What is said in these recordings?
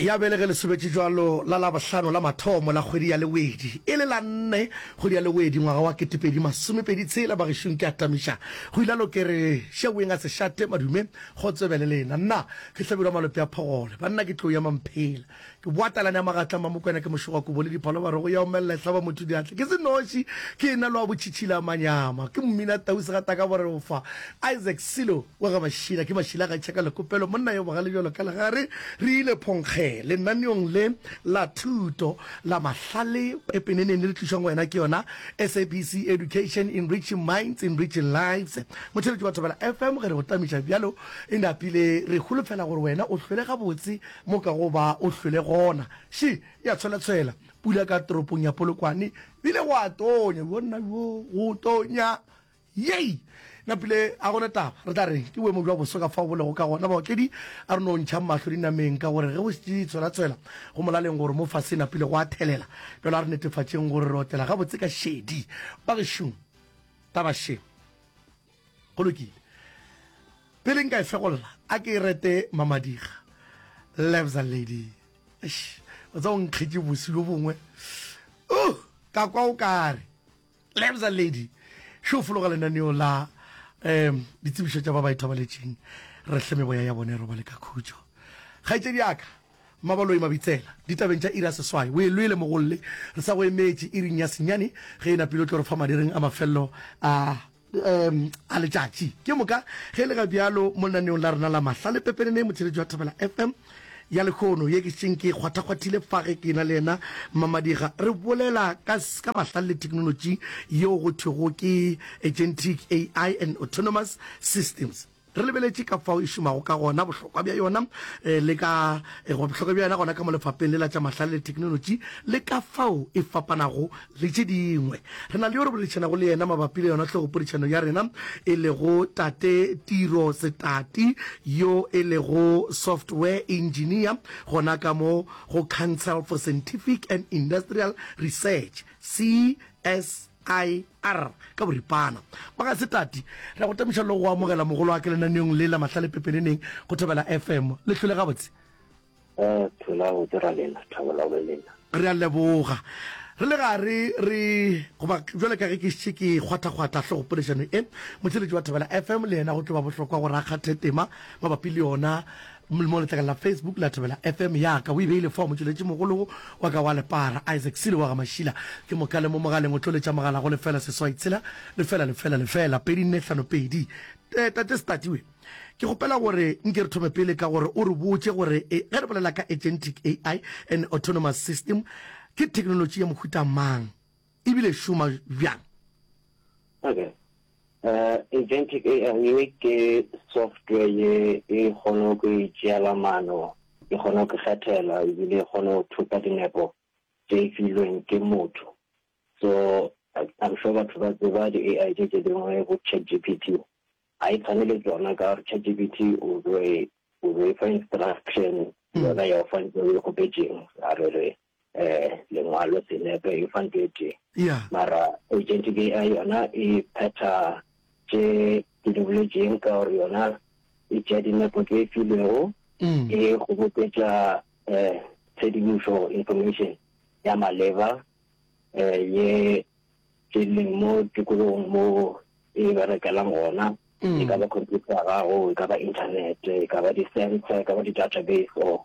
ya bele ge le sobetše jwalo la labohlano la mathomo la kgwedi ya lewedi e le la nne kgwedi ya lewedi ngwaga wa ketepedi masomepedi tshela bagešong ke atamiša go ila lokere šeweng a se šate madume go tsebe le lena nna ke hlabirwa malope a phogole banna ke tlo ya mamphela Ke boa talane ya magatla, Mmamokwena ke mošogo wa kobo le diphalobaro go ya omelela e hlaba motho diatla. Ke se noši, ke ena le wa botšhitšhila manyama. Ke mmina tau segataka bo re o fa. Isaac Silo wa ga Mašila, ke Mašila ga Tšhaka Lekopelo, monna yo bogale bjalo ka legare. Re ile Phonkge lenaneong le la thuto la mahlale. Pepeneneni re tlišwang go yena ke yona SABC Education, Enriching Minds, Enriching Lives. Motheletši wa Thobela FM ge re go tamiša bjalo e napile re holofela gore wena o hlwele gabotse Mo ka go ba o hlwele gona. Še, ya tshwelatshwela, pula ka toropong ya Polokwane, go ile gwa tonya, bjonna bjo, go tonya. Yey! Napile, ga go na taba, re tla reng, ke boemo bja boso ka fao bo lego ka gona. Baotledi, a re no ntšhang mahlo dinameng, ka gore ge go šetše di tshwelatshwela, go molaleng gore mo fase napile gwa thelela. Bjale a re netefatšeng gore re otlela gabotse ka šedi, bagešo. Taba, še. go lokile pele nka e fegolla a ke e rete mamadiga lebza lady o tsa o nkgetše bosi yo bongwe uh, ka kwa o kare lebza lady šo fologa lenaneo la um ditsebišo tša ba ba ithobaletšeng re hle meboya ya bone robale ka khutšo kgaetšedi aka mabaloi mabitsela ditabeng tša ira seswai o e lwele mogolle re sa go emetše iring ya senyane ge e napile o tlo re fa madireng a mafelelo a Um a letšatši ke moka ge le ga bjalo mo lenaneong la rena la mahla le pepenene motšheletši wa thabela fm ya lekgono ye ke šeng ke kgwathakgwathile fa ge ke na le yena mmamadiga re bolela ka s- ka mahla le thekenolotši yeo go thwego ke agentic ai and autonomous systems Re lebeletše ka fao e šomago ka gona, bohlokwa bja yona le ka goba bohlokwa bja yona gona ka mo lefapeng le la tša mahlale le theknolotši le ka fao e fapanago le tše dingwe. Re na le yo re boledišanago le yena mabapi le yona hlogopodišano ya rena e lego Tate Tiro Setati yo e lego Software Engineer gona ka mo go Council for Scientific and Industrial Research, CSIR. IR, ka boripana. Magasetati, re a go temoša le go amogela mogolo wa ka lenaneong le la mahlale pepeneneng go Thobela FM. Le hlole gabotse? Ee, thula gabotse ra lena, Thabela le lena. Re a leboga. Re le gare re, goba bjale ka ge ke šetše ke e kgwathakgwatha hlogopoledišano e, motšheletši wa Thobela FM le yena go tlo ba bohlokwa gore a kgathe tema mabapi le yona. Mo letlakala la Facebook la Thobela FM ya ka o e beile fa motšweletši mogolo wa ka wa Lepara, Isaac Silo wa ga Mašila. Ke mo kale mo mogaleng o tlo letša mogala go lefela seswai tshela lefela lefela lefela pedi nne hlano pedi. Tate Statiwe, ke kgopela gore nke re thome pele ka gore o re botše gore ge re bolela ka Agentic AI and Autonomous System ke theknolotši ya mohuta mang? e bile šoma bjang? Okay. Uh, Agentic AI ke software ye e kgono go itšeela mano, e kgono go kgethela, ebile e kgono go thupa dinepo tše e filweng ke motho. So, I'm sure batho ba tseba di-AI tše tše dingwe go ChatGPT. Ga e tshwane le tsona ka gore ChatGPT o be o be fa instruction yona ya o fa ntse o e kgopetseng a re re um lengwalo senepe e fa nto e tee yeah. mara agent ke a yona e phetha tše ke di boletseng ka gore yona e tšea dinepo tse e filego mm. e kgoboketša um tshedimošo information ya maleba um ye ke leng mo tikologong mo e berekelang gona mm. e ka ba computer ya gago e ka ba internet e ka ba di-sensor e ka ba di-database or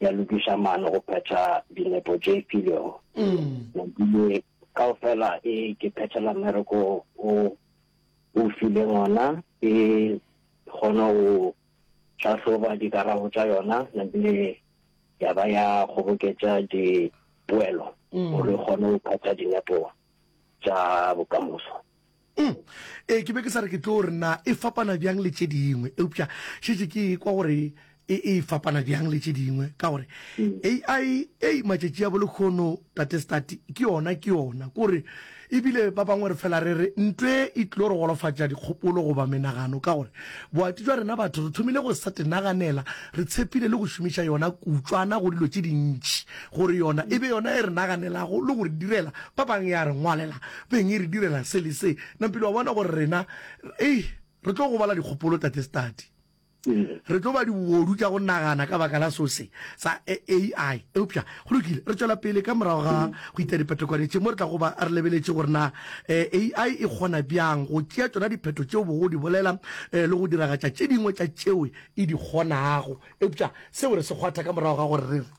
ya lokiša maano go phetha dinepo tše filwego. Mabile kaofela e ke phethela mmereko o o fileng ona, e kgona go hlahloba dikarabo tša yona nabile ya ba ya kgoboketša dipoelo gore e kgone go phetha dinepo tša bokamoso. Uhm, ee, ke be ke sa re ke tlo re na e fapana bjang le tše dingwe, eupša šetše ke e kwa gore e e fapana bjang le tše dingwe, ka gore AI, ei, matšatši a bolekgono, Tate Stati, ke yona, ke yona, ke gore ebile ba bangwe re fela re re ntwe e tlilo re golofatša dikgopolo goba menagano, ka gore boati jwa rena batho re thomile go sa tenaganela, re tshepile le go šomiša yona kutšwana go dilo tše dintši, gore yona e be yona e re naganelago le go re direla, ba bang ya re ngwalela. Beng e re direla se le se. Nampile wa bona gore rena, eih, re tlo gobala dikgopolo, Tate Study. Re tlo ba dibobodu tša go nagana ka baka la so se, sa AI. Eupša, go lokile, re tšwela pele ka morago ga go ita diphetokwane tše, mo re tlago ba re lebeletše gore na AI e kgona bjang go tšea tšona diphetho tšeo bogo di bolela le go diragatša tše dingwe tša tšeo e di kgonago. Eupša seo re se kgwatha ka morago ga gore re re.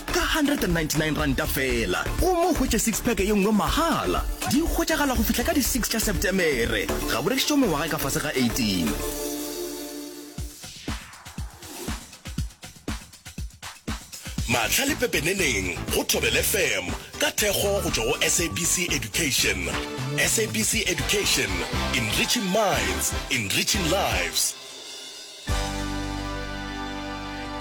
Ka R199 feela, o mo hwetše six-pack ye nngwe mahala. Di hwetšagala go fihla ka di six tša Sepetemere. Ga bo rekišwe mengwaga e ka fase ga 18. Maatla le pepeneneng go Thobela FM ka thekgo go tšwa go SABC Education. SABC Education, enriching minds, enriching lives.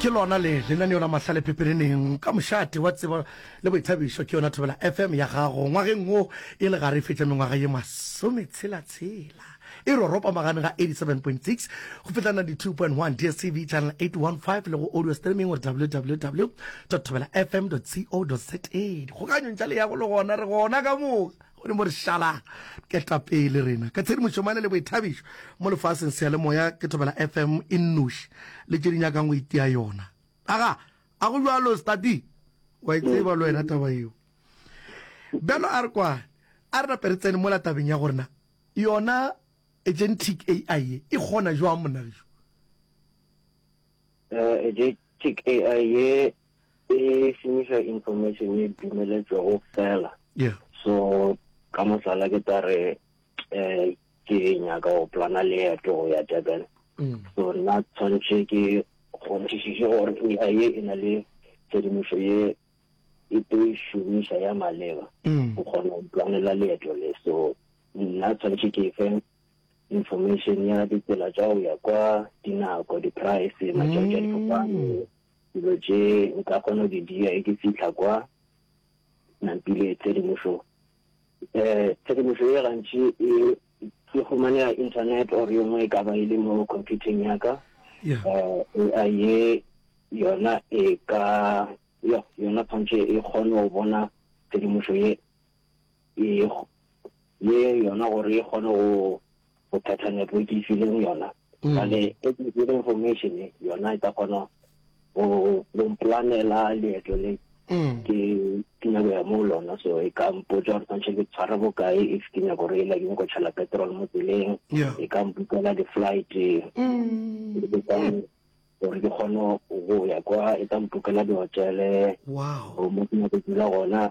ke lona le lenaneo la mahlale pepereneng ka mošate wa tsebo le boithabišo ke yona thobela fm ya gago ngwageng wo e le gare e fetša mengwaga ye masometshela-tshela e roropa magane ga 87.6 go fihla 92.1 dstv channel 815 le go audio streaming gore www thobela fm co za dikgokanyong tša leyago le gona re gona ka moka Modimo re šala ketapele rena ka tshedimošo mane le boithabišo mo lefaseng seyalemoya ke thobela FM e nnoši le tše di nyakang go itia yona aga a go jalo stati wa e tseba le wena taba yeo bjalo a re kwane a re nape re tsene mola tabeng ya gorena yona agentic ai ye e kgona jwang monna geso agentic ai ye e šomiša information e dumeletšwego fela so ka mohlala ke tla re um ke nyaka go plana leeto go ya durban mm. so nna tshwanetse ke kgonthišiše gore ai ye e na le tshedimošo ye e tlo e šomiša ya maleba mm. go kgona go planela leeto le so nna tshwanetse ke fe information ya ditsela tsa go ya kwa dinako di-price matšatši a difofane mm. Dilo tše nka kgona go di dira e ke fihla kwa nampile tshedimošo. Tshedimošo ye gantši e ke humanega internet or yo nngwe e ka ba e le mo computing ya ka. AI ye yona e ka yona tshwanetse e kgone go bona tshedimošo ye ye yona gore e kgone go phetha network e fileng yona. Bjale technical information yona e ka kgona go go mplanela leeto le ke ke nyako ya mo lona so e ka mpotsa gore tshwanetse ke tshware bokae if ke nyako gore e la ke nyako tšhela petrol mo tseleng Yeah. e ka mpukela di-flight ke kang gore ke kgone go ya kwa e ka mpukela di-hotele Wow. go mo ke nyako dula gona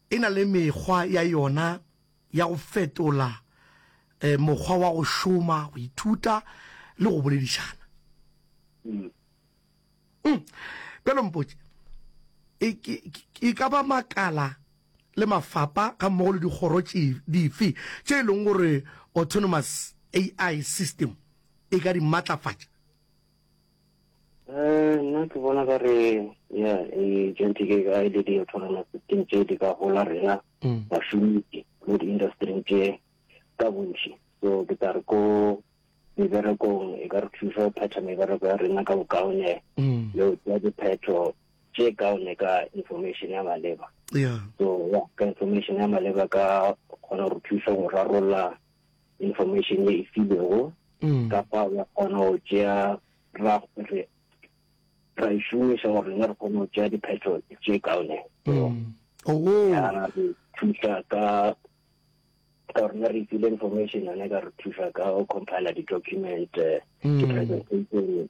E na le mekgwa ya yona ya go fetola mokgwa wa go šoma, go ithuta le go boledišana. Bjalo mpotše, E ka ba makala le mafapa ga mmogo le dikgoro dife tše e lego gore Autonomous AI System e ka di matlafatša? Um nna ke bona ka re ya jenti ke ga e le di autonomous system tše di ka gola rena mm. bašomitši mo di-industry tše ka bontši so ke tla re ko meberekong e ka re thuša go phetha mebereko ya rena ka bokaone mm. le go tsea diphetho tše kaone ka information ya maleba so ya ka information ya maleba ka kgona go thuša go rarolla information ye e filwego mm. kapa wa kgona go tšea ra re ra e šomiša gore rena re kgone go tšea diphetho tše kaone mm. oh. ya re thuša ka ka gore ne re ifile information yone ka re thuša ka go compile di-document eh, mm. di-presentation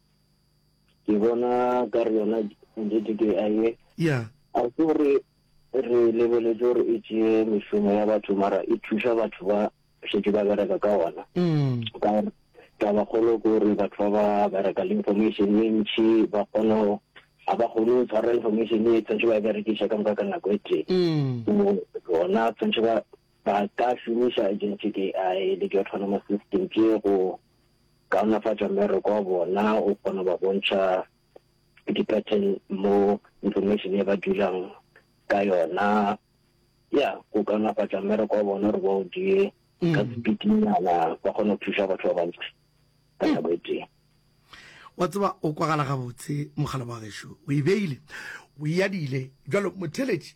ke bona ka re yona GDPI yeah. a se gore re lebeletse gore e tšee mešomo ya batho mara e thuša batho ba šetše ba bereka ka ona mm. ka taba kgolo ke gore batho ba ba bereka le information e ntšhi ba kgona ga ba kgone go tshwara information e tshwanetse ba e berekiša ka moka ka nako e tee mm. bona tshwanetse ba ka šomiša agentic ai le di-autonomous system tše go kaonafatša mmereko wa bona, o kgona go ba bontšha di-pattern mo information e ba dulang ka yona, ya go kaonafatša mmereko wa bona gore ba o die ka sepitinyana, ba kgona go thuša batho ba bantsi ka nako e tee. wa tseba o kwagala gabotse mogala wa gešo o e beile o eadile jalo motheletši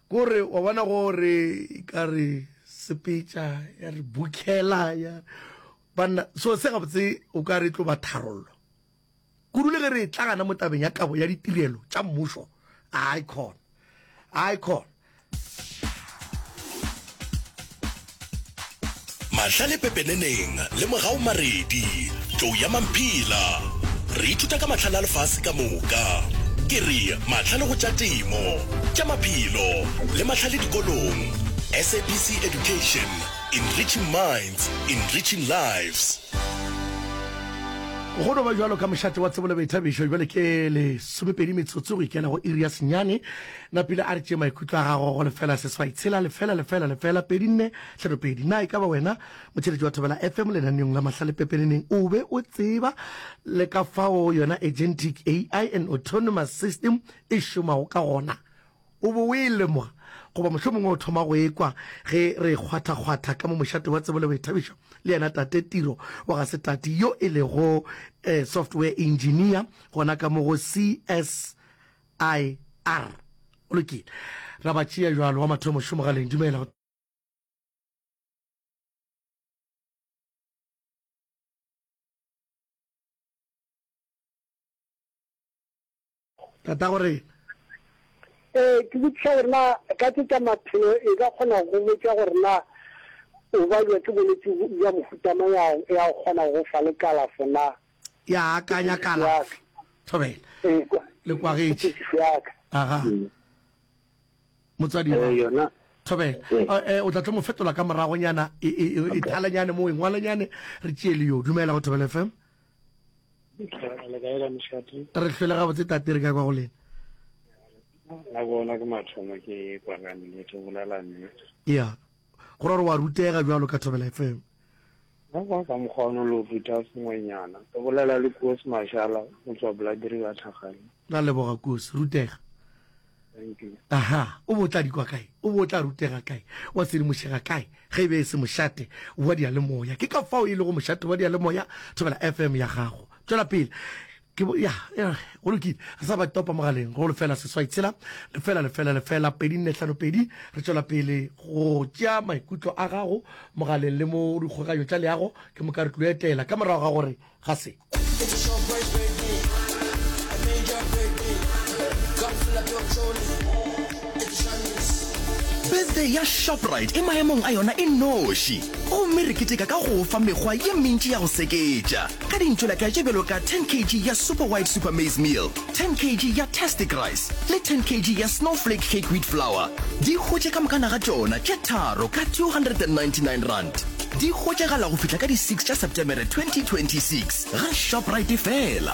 Ko re, wa bona, go re, ka re sepetša, ya re bukhela, ya, banna. So, se gabotse o ka re e tlo ba tharollo, kudu le ge re tla gana mo tabeng ya kabo ya ditirelo tša mmušo. Ai khona, ai khona. Mahlale pepeneneng le mogau maredi, tlou ya mamphila. Re ithuta ka mahlale a lefase ka moka. Ke re mahlale go tša temo, tša maphelo le mahlale dikolong. SABC Education, Enriching Minds, Enriching Lives. Go no ba bjalo ka mošate wa tsebo le boithabišo, bjale ke lesomepedi metsotso go ikela go iri ya senyane. Napile a re tšee maikutlo a gago go lefela seswai tshela lefela lefela lefela pedi nne tlhano pedi. Na e ka ba wena motheeletši wa Thobela FM lenaneong la Mahlale Pepeneneng o be o tseba le ka fao yona Agentic AI and Autonomous System e šomago ka gona? O be o e lemoga, goba mohlomongwe o thoma go e kwa ge re e kgwathakgwatha ka mo mošate wa Tsebo le Boithabišo le yena Tate Tiro wa ga Setati yo e lego Software Engineer gona ka mo go CS I R. Go lokile. Ra ba tšea bjalo. Wa mathomo šo mogaleng. Dumela. Tata go re. Ee, ke botšiša gore na ka tše tša maphelo e ka kgona go botša gore na o balwa ke bolwetse bja mohuta mang ya go kgona go fa le kalafo na. ya akanya kalafi thobela le kwagetše aga motswadi wa yona thobela o tla tlo mo fetola ka moragonyana e thalanyane mo e ngwalanyane re tšee le yo dumela go thobela fm re hlwele gabotse tate re ka kwa go lena la bona ke mathomo ke kwakanile ke bolela mme ya go ra gore wa rutega jalo ka thobela fm Mo kwa ka mokgwa ono lo ruta sengwenyana. Re bolela le Koos Mashala go tswa Bladriver Thakgale. Ra leboga Koos, rutega. Thank you. Aha, o bo o tla dikwa kae? O bo o tla rutega kae? Wa sedimošega kae? Ge e be e se mošate wa diyalemoya. Ke ka fao e lego mošate wa diyalemoya, thobela FM ya gago. Tšwela pele. Ke bo, ya, ya, go lokile. Re sa ba topa mogaleng, go lefela seswai tshela, lefela, lefela, lefela, pedi nne hlano pedi. Re tšwela pele go tšea maikutlo a gago mogaleng le mo dikgokganyo tša leago. Ke moka re tlilo etela ka morago ga gore ga se. Birthday ya Shoprite e maemong a yona e noši, gomme re keteka ka go o fa mekgwa ye mentši ya go seketša ka dintšolaka tše bjalo ka 10 kg ya Super White Super Maize Meal, 10 kg ya Tastic Rice le 10 kg ya Snowflake Cake Wheat Flour. Di hwetše ka mokana ga tšona tše tharo ka R299. Di hwetšagala go fihla ka di 6 tša Setemere 2026 ga Shoprite fela.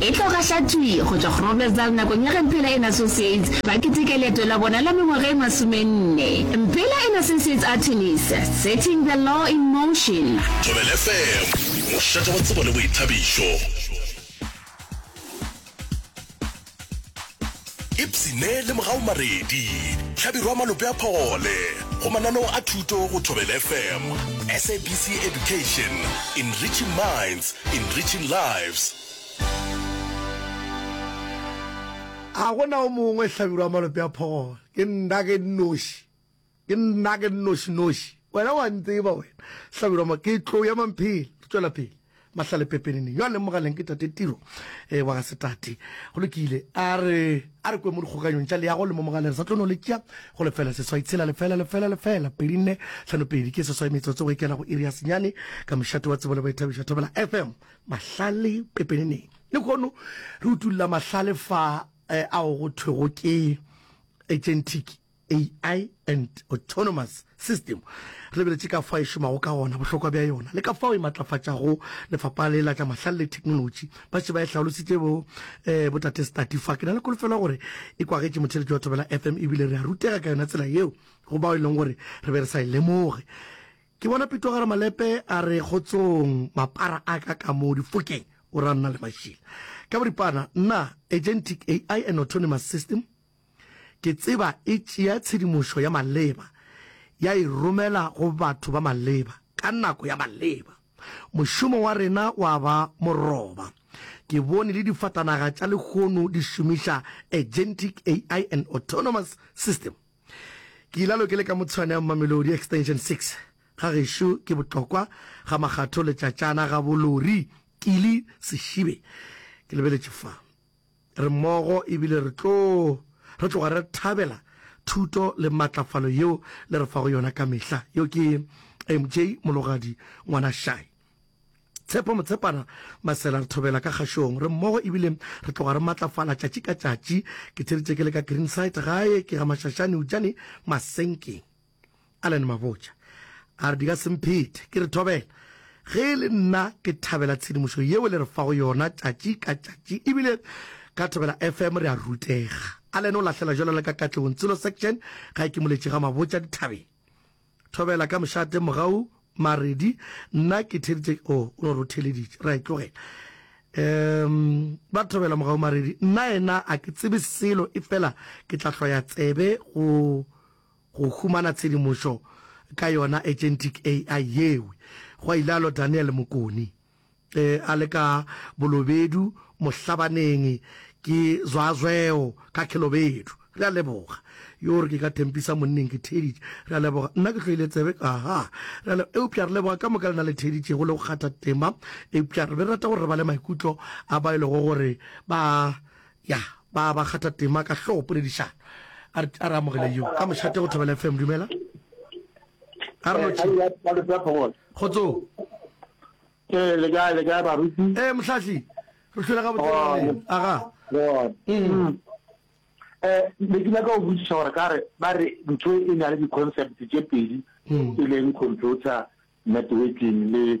E tlo gahla thwi go tšwa Groblersdal nakong ya ge Mphela and Associates ba keteka leeto la bona la mengwaga e masomenne. Mphela and Associates Artemis, Setting the Law in Motion. Thobela FM, mošate wa tsebo le boithabišo. Ipsine le Mogau Maredi, Hlabirwa Malope a Phogole, go mananeo a thuto go Thobela FM, SABC Education, Enriching Minds, Enriching Lives. Ga go na o mongwe, Hlabirwa Malope a Phogole, ke nna, ke nnoši. Ke nna ke nnošinoši. Wena o a ntseba wena. Hlabirwa mo, Ke tlo ya Mamphele. Re tšwela pele. Mahlale pepeneneng yo a leng mogaleng ke Tate Tiro e, wa ga Setate. Go lokile. A re, a re kwe mo dikgokaganyong tša leago le mo mogaleng. Re sa tlo no le tšea go lefela seswai tshela lefela lefela lefela pedi nne hlano pedi. Ke seswai metsotso go ikela go iri ya senyane ka mošate wa tsebo le boithabišo. Thobela FM, Mahlale pepeneneng. Lehono re utolla mahlale fa ao go thwego ke Etšentiki. AI and Autonomous System, re lebeletše ka fao e šomago ka gona, bohlokwa bja yona le ka fao e matlafatšago lefapha le la tša mahlale le theknolotši. Ba še ba e hlaolositše bo eh, bo Tate Stati fa. Ke na le kolofelo gore e kwagetše motheletši wa Thobela FM e bile re a rutega ka yona tsela yeo go bao e leng gore re be re sa e lemoge. Ke bona Pitogare Malepe a re kgotsong mapara a ka ka mo difokeng o ra nna le mašila ka boripana nna agentic AI and autonomous system Ke tseba e tšea tshedimošo ya maleba ya e romela go batho ba maleba ka nako ya maleba. Mošomo wa rena wa ba moroba. Ke bone le difatanaga tša lehono di šomiša Agentic AI and Autonomous System. Ke ilalo ke le ka Motshwane ya Mamelodi Extension 6. Ga gešo ke botlokwa ga makgatho letšatšana ga bo lori Kili Seshibe. Ke lebeletše fa. re mmogo e bile re tlo re tloga re thabela thuto le matlafalo yeo le re fago yona ka mehla. Yo ke MJ Mologadi Ngwana Shai. Tshepo Motshepana Masela re thobela ka kgašong re mmogo e bile re tloga re matlafala tšatši ka tšatši. Ke theeditše ke le ka Greenside gae ke ga Mashashane Eujane Masenkeng. Allan Mabotja a re di ka se mphethe. Ke re, Thobela, ge e le nna ke thabela tshedimošo yeo le re fago yona tšatši ka tšatši e bile ka Thobela FM re a rutega. Allan o lahlela jwalo le ka Katlehong Tshilo Section ga e kimoletše ga Mabotja dithabeng. Thobela, ka mošate mogau Maredi, nna ke theditše o oh, o no re o theleditše, ra e tlogela. Um, ba Thobela mogau Maredi, nna ena a ke tsebe selo e fela ke tla hloya tsebe go Go humana tshedimošo ka yona agentic AI yeo, gwa ilalo Daniel Mokoni. Ge a le ka Bolobedu mohlabaneng ke zwazweo ka Khelobedu. Re a leboga. Yoo re ke ka Thempisa monneng ke theeditše. Re a leboga. Nna ke hloile tsebe ka ha. Re a leboga. Eupša re leboga ka moka lena le theeditšego le go kgatha tema. Eupša re be re rata gore re bale maikutlo a bao e lego gore ba Ya, ba, ba kgatha tema ka hlogo poledišano. A re, a re amogele yo ka mošate go Thobela FM. Dumela. A re lotšhe. Kgotsong. Ee, le kae, le kae baruti? Ee, Mohlahli. Re hlwele gabotse le lena. Aga. Eh, ne ke nyaka go botsiša gore ka re ba re ntho e na le di-concept tše pedi e leng computer networking le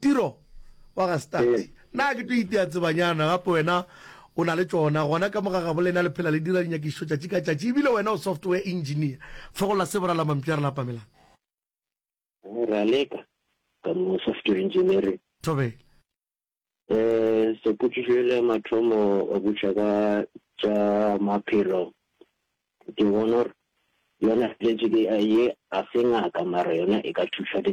Tiro wa ga Stats. Na ke tlo itea tsebanyana, gape wena o na le tšona. Gona ka mo ga gabo lena le phela le dira dinyakišišo tšatši ka tšatši, ebile wena o software engineer. Fogolla se, boralamampi a re lapamelang. Moraleka, Ka mo go software engineering. Thobela. Stats, Potšišo yela ya mathomo o botša ka tša maphelo, ke bona gore yona gentic AI ye ga se ngaka mara yona e ka thuša dingaka.